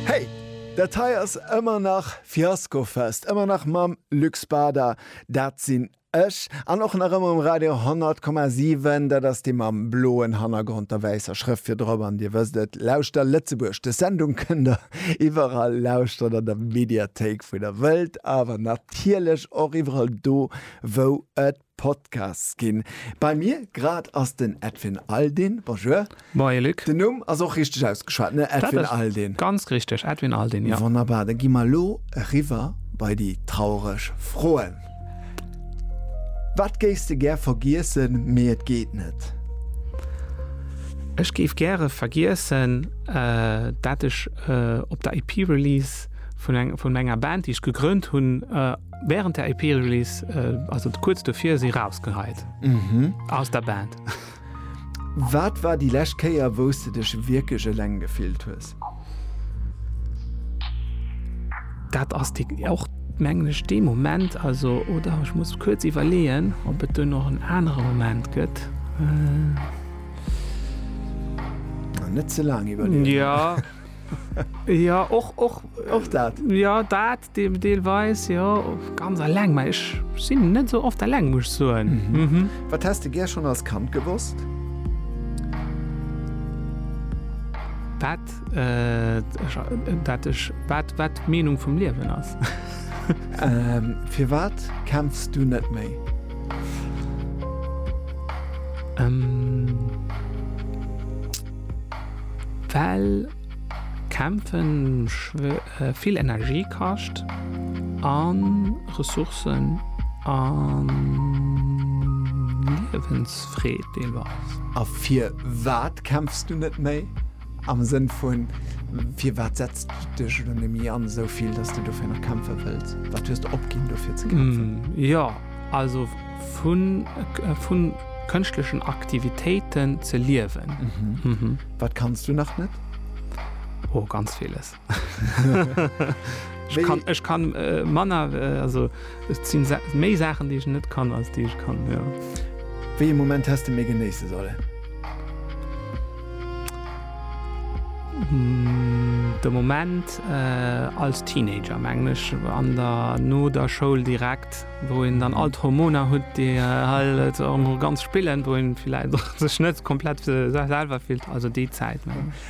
Hey! Dat hei ass ëmmer nach Fiaskofest, ëmmer nach mam Luc Spada, dat sinn ech, an och nach ëmmer um Radio 100,7, dat ass dee mam bloen Hannergrond, der wäisser Schrëft virdrop, an Dir wësst et, Lauschter Lëtzebuerg. Dës Sendung kënnt Der iwwerall lauschteren, an der Mediathéik, wou Der wëllt, awer natierlech och iwwerall do, wou et Podcasts ginn. Bei mir grad ass den Edwin Aldin. Bonjour. Moie Luc. Den Numm ass och richteg ausgeschwat, ne? Edwin Aldin. Dat ass ganz richteg, Edwin Aldin, jo. Wonnerbar, da gi mer elo eriwwer bei déi traureg Froen. Wat géifs de gär vergiessen, mee et geet net? Ech géif gäre vergiessen, dat ech op der EP-Release vun enger Band, déi ech gegrënnt hunn, Während der EP-Release, äh, also kurz dofir si rausgeheit mhm. aus der Band. Wat war die läscht Kéier wous du dech wierklech eleng gefillt hues? Dat ass die och mengglech de Moment also oder ich muss kurz iwwerleen, ob et du noch en anere Moment gëtt. Äh, net ze lang iwwer. Ja. ja och och och dat ja dat Deelweis jo, ganz alleng, mä ech sinn net esou oft alleng, muss ech soen. Wat häss de gär schonn als Kand gewosst? Wat d'Meenung vum Liewen ass. Firwat kämpfs du net méi? Well kämpfen. vill Energie kascht a Ressourcen a Liewensfreed deelweis. A firwat kämpfs du net méi? Am Sënn vu firwat setz du dech elo net méi an esou vill, datt s du dofir nach kämpfe wëlls? Wat hues de opginn dofir ze kämpfen? Jo, also vu kënschtlechen Aktivitéiten ze liewen. Wat kanns du nach net? Oh, ganz villes. Ech kann, ech kann äh, Manner äh, also sinn sa méi Sachen, déi ech net kann als déi ech kann. Ja. Wéi e Moment hast du mé genéisse solle? Mm, de Moment äh, als Teenager menglech an der no der Schoul direkt. wou een dann all d'Hormoner hutt, déi hei et erëm ganz spillen, wou een villäit och sech net komplett selwer fillt, also déi Zäit.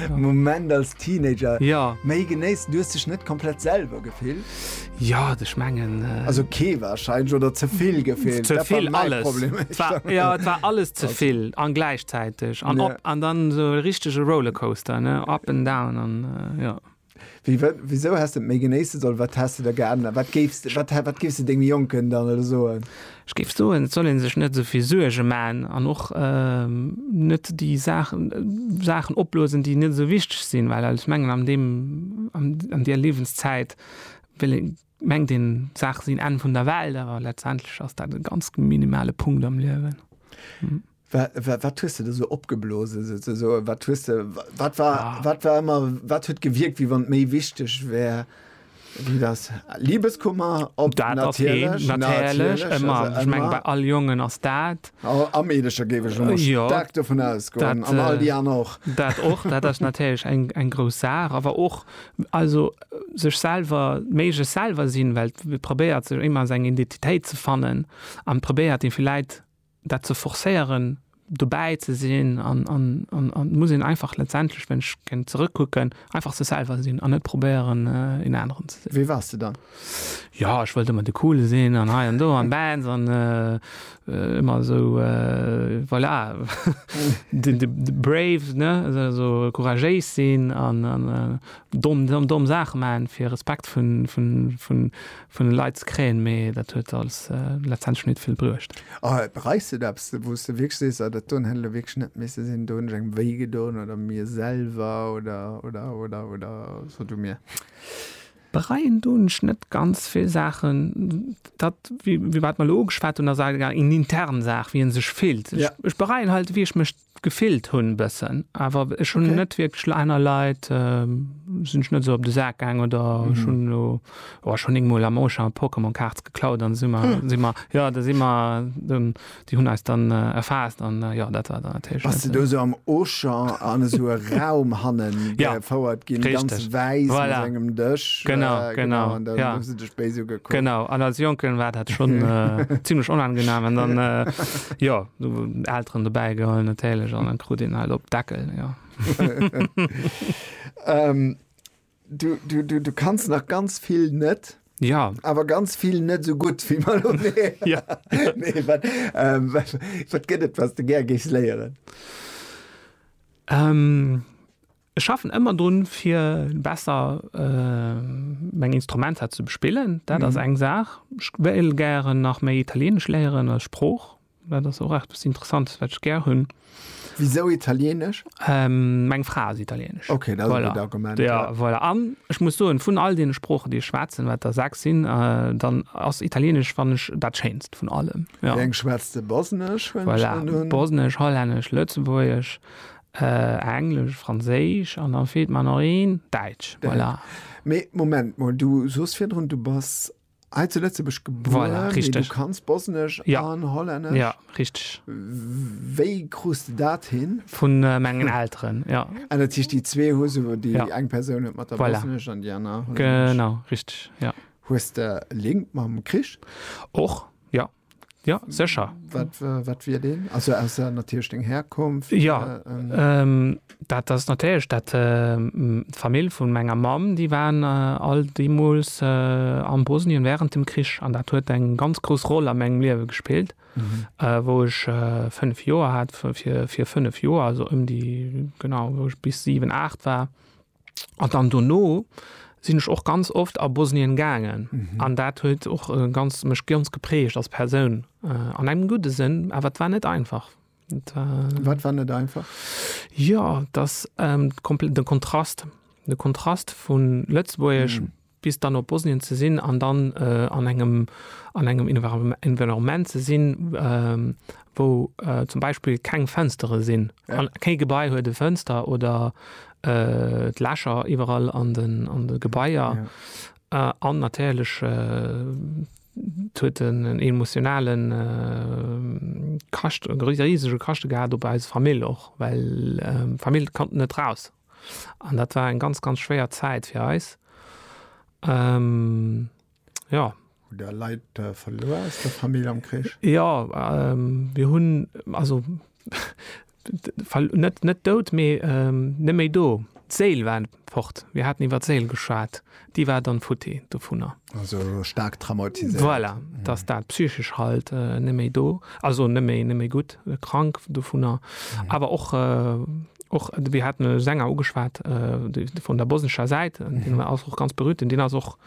Moment als Teenager. Ja. Méi genéissen, du hues dech net komplett selwer gefillt? Ja, ech mengen. Also kee warscheinlech oder ze vill gefillt? Ze vill alles. Problem. Et war, ja, et war alles ze vill an gläichzäiteg an Ja. op an dann esou e richtege Rollercoaster, ne, up and down an, ja. Wéi, wat, wisou häss de et méi genéisse sollen? Wat häss de da geännert? Wat géifs de, wat, wat géifs de dengem Jonken dann elo soen? Ech géif soen, et soll ee sech net esou vill Suerge maachen an och net déi Saachen, Saachen opblosen, déi net esou wichteg sinn, well ech mengen an deem, an där Liewenszäit wéll ee, mengt een, d'Saache sinn Enn vun der Welt, awer letztendlech ass dat e ganz minimale Punkt am Liewen. Wat hues de der sou opgeblosen, souzesoen? Wat hues de, wat war, ah. wat war immer, wat huet gewirkt, wie wann méi wichteg wär? Wie das Liebeskummer op dat natierlech, natierlech, immer. Also, ich mein, bei all Jungen ass dat. Oh, am Edescher géif ech schon ja, stark davon ausgoen. An all die anderen och. Dat och, dat ass natierlech eng, eng grouss Saach. Awer och, also, sech selwer, méi sech selwer sinn, well probéiert sech immer seg Identitéit ze fannen an probéiert déi villäit dat ze forcéieren, dobäi ze sinn an et muss een einfach letztendlech, wann ech géing zeréckkucken, einfach sech selwer sinn an net probéieren, een aneren ze sinn. Wie waars de dann? Jo, ech wollt ëmmer de Coole sinn an hei an do an Bands an ëmmer esou, voilà, de Brave, ne, esou couragéis sinn an domm Saache maachen, fir Respekt vun vun de Leit ze kréien, mee dat huet alles letztendlech nit vill bruecht. A bereis de et eppes, wou s de wierklech sees, Ah, dat doen hätt elo wierklech net misse sinn, do hunn ech engem wéi gedoen oder mir selwer oder, oder, oder, oder, so du mir? Bereien doen ech net ganz vill Saachen. Dat, firwat mer elo ugeschwat hunn, ass awer eng intern Saach, wéi ee sech fillt. Ech bereien halt, wéi ech mech Gefillt hun bessen awer ech hun net wierklech lo aner Leit sin ech net esou op de Saak gaang oder ech hun lo oh ech hun éngmol am Auchan Pokémon Cards geklaut an si mer si mer jo da si mer dann déi hun eis dann erfaasst an jo dat war dann natierlech net. Bass de do esou am Auchan an esou e Raum hannen gefouert gin ganz wäiss mat engem Dësch genau an dann hu se dech. béis ugekuckt. Genau, an als Jonken war dat schon äh, ziemlich onangenehm. Und dann, äh, ja, so Eltern dabei geholt natürlich, und dann krut den halt op Deckel, ja. ähm, du, du, du, du kannst nach ganz viel net. Ja. Aber ganz viel net so gut wie mal um ja. nee, wat, ähm, wat, wat gëtt et, was du ger gis léieren? Ähm, Ech schaffen ëmmer drun, fir besser meng Instrumenter ze bespillen. Dat ass eng Saach. Ech wéilt gären nach méi Italieenesch léieren als Sprooch. Dat ass och eppes Interessantes, wat ech gär hunn. Wisou Italieenesch? Meng Fra ass Italieenesch. Ok, dat ass e gutt Argument. Voilà. Jo, voilà. An ech muss soen, vun all deene Sproochen, déi ech schwätzen, wat der sechs sinn, dann ass Italieenesch, fannen ech, dat Schéinst vun allem. Jo. Wéi eng schwätzt de? Bosnesch, hunn ech an un. Voilà, Bosnesch, Hollännesch, Lëtzebuergesch, Englesch, Franséisch an dann feelt mer nach een, Däitsch. Voilà. Mee Moment mol, du soos virdrun, du bass hei zu Lëtzebuerg gebuer, voilà, mee du kanns Bosnesch ja. an Hollännesch? Ja, richteg. Wéi krus de dat hin? Vu mengen Elteren, ja. Ah, dat heescht, déi zwee hu se, déi ja. eng Persoun huet mat der voilà. Bosnesch an déi aner Hollännesch? Genau, richteg, ja. Hues de Link mam Krich? Och, ja. Ja secher wat wie den also aus der natierch deng herkunft ja äh, ähm, dat ass natierch dat äh, d'famill vun menger mam déi waren äh, all deemols äh, am bosnien während dem krich an dat huet eng ganz grouss roll am engem liewe gespillt mhm. äh, wou ech äh, fünf joer hat fir fir fünf joer also ëm um déi genau wou ech bis 7 8 war An dann dono sinn ech och ganz oft a Bosnien gaangen mhm. an dat huet och äh, ganz mech ganz geprägt als Persoun äh, an engem gute Sinn, awer wat war net einfach. Et war, wat war net einfach? Ja, das ähm, den Kontrast de Kontrast vun Lëtzbuerg mhm. bis dann op Bosnien ze sinn an dann an engem an engem Environnement ze sinn, wou zum Beispill keng Fënstere sinn. Kee Gebai huet e Fënster oder d'Lächer iwwerall an de Gebaier an natierlech huet en en emotionalen Kascht, e risege Kaschte gehat op eis Famill och, well d'Famill konnt net raus. An dat war eng ganz, ganz schwéier Zäit fir eis. Jo. Hutt Där Leit verluer aus der Famill am Krich? Jo, mir hunn, also net dout, mee net méi do. D'Séil war fort. Mir haten iwwer d'Séil geschwat. déi war dann futti dovunner. Also staark traumatiséiert. Voilà, dass dat psychesch halt net méi do, also net méi, net méi gutt, krank dovunner. Awer och, och, mir haten e Sänger ugeschwat, vun der bosnescher Säit, deen war ass och ganz berührt, deen ass och,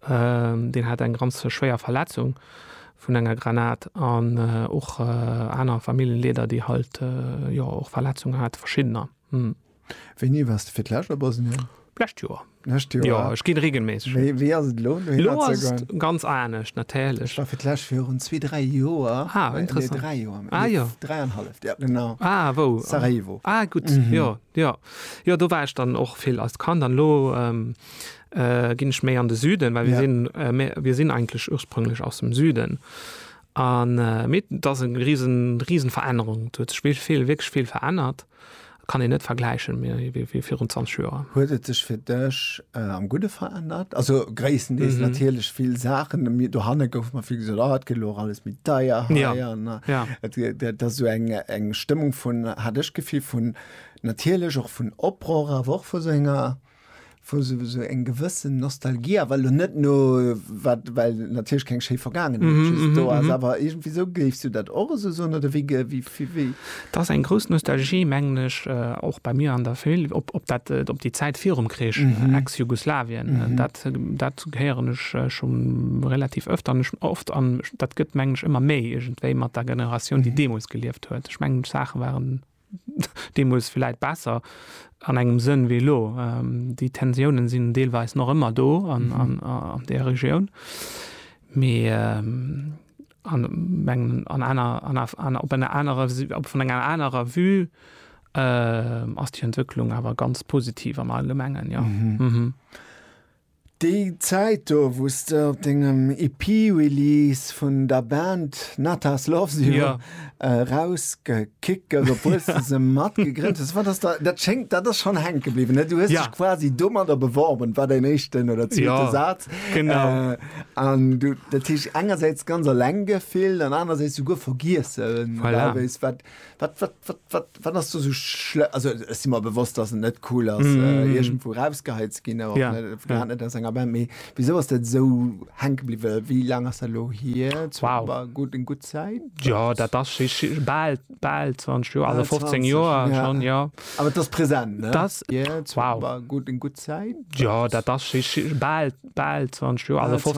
deen hat eng ganz schwéier Verletzung vun enger Granat an och aner Familljenleeder, déi halt, jo, och Verletzungen hate, verschiddener. Wéini wars de fir d'lescht a Bosnien? D'lescht Joer. D'lescht Joer? Jo, ech ginn regelméisseg hin. Wéi, wéi ass et elo, dohinner ze goen? Elo ass et ganz anescht, natierlech. Ech war fir d'lescht virun zwee, dräi Joer. Ah, interessant. Nee, dräi Joer. Ah, jo. Nee, dräi an halleft, jo, genau. Ah, wou? Sarajevo. Ah, gutt, jo, jo. Jo, do war ech dann och vill als Kand an elo ginn ech méi an de Süden, well mir sinn, mir, mir sinn eigentlech ursprünglech aus dem Süden. An, mee et ass eng risen, risen Verännerung. Et huet sech vill, vill, wierklech vill verännert. Kann een net vergläichen méi wéi virun 20 Joer. Huet et sech fir dech am Gudde verännert? Also gréisstendeels natierlech vill Saachen. Dohanne gouf mer vill gesot, ah et gëtt elo och alles méi deier hei an dat ass esou eng Stëmmung vun, hat ech d'Gefill, vun natierlech och vun Oprohr, awer och vu sou enger. wou se esou eng gewëssen Nostalgie, awer elo net no wat, well natierlech keng schéi Vergaangenheet just do ass, awer iergendwéi esou, géifs du dat och esou soen oder wéi, wéi, wéi? Dat ass eng grouss Nostalgie, mengen ech, och bei mir an der Famill, op, op dat, op déi Zäit virum Krich, Ex-Jugoslawien. Dat, dat héieren ech scho relativ ëft an ech, oft an dat gëtt, mengen ech, ëmmer méi iergendwéi mat der Generatioun, déi deemools gelieft huet. Ech mengen d'Saache waren Deemools villäit besser an engem Sënn wéi elo. Déi Tensiounen sinn deelweis nach ëmmer do an där Regioun. Mee an mengen an aner an aner op enger anerer vun enger anerer Vue ass déi Entwécklung awer ganz positiv am Allgemengen, jo. Déi Zäit do, wou s de op dengem EP-Release vun der Band Natas Loves You ja. äh, rausgekickert, obwuel s de se mat gegrënnt hues, wat ass da, dat schéngt, dat ass schonn hänke bliwwen, ne? Du hues ja. dech quasi domadder beworben, war dein éischten oder zweete ja. Saz. Genau. Äh, an du, dat heescht engersäits ganz alleng gefillt an anersäits souguer vergiessen, voilà. wat Wat, wat, wat, wat, wat ass do sou schlë-? Also, ech si mer bewosst, dass et net cool ass, äh, iergendwou erausgeheit ze ginn, awer och Ja, net, ja. grad net aus enger Band. Mee wisou ass dat esou hänke bliwwe? Wéi laang ass dat elo hier? Zu Wow. ba- gutt, eng gutt Zäit? Ja, dat ass schi- schi- bal, bal 20 Joer, also Bal 15 20, Joer ja. schonn, ja. Awer et ass present, ne? Das- Hier, zu wow. ba- gutt, eng gutt Zäit? Ja, dat ass schi- schi- bal, bal 20 Joer, also Bal 15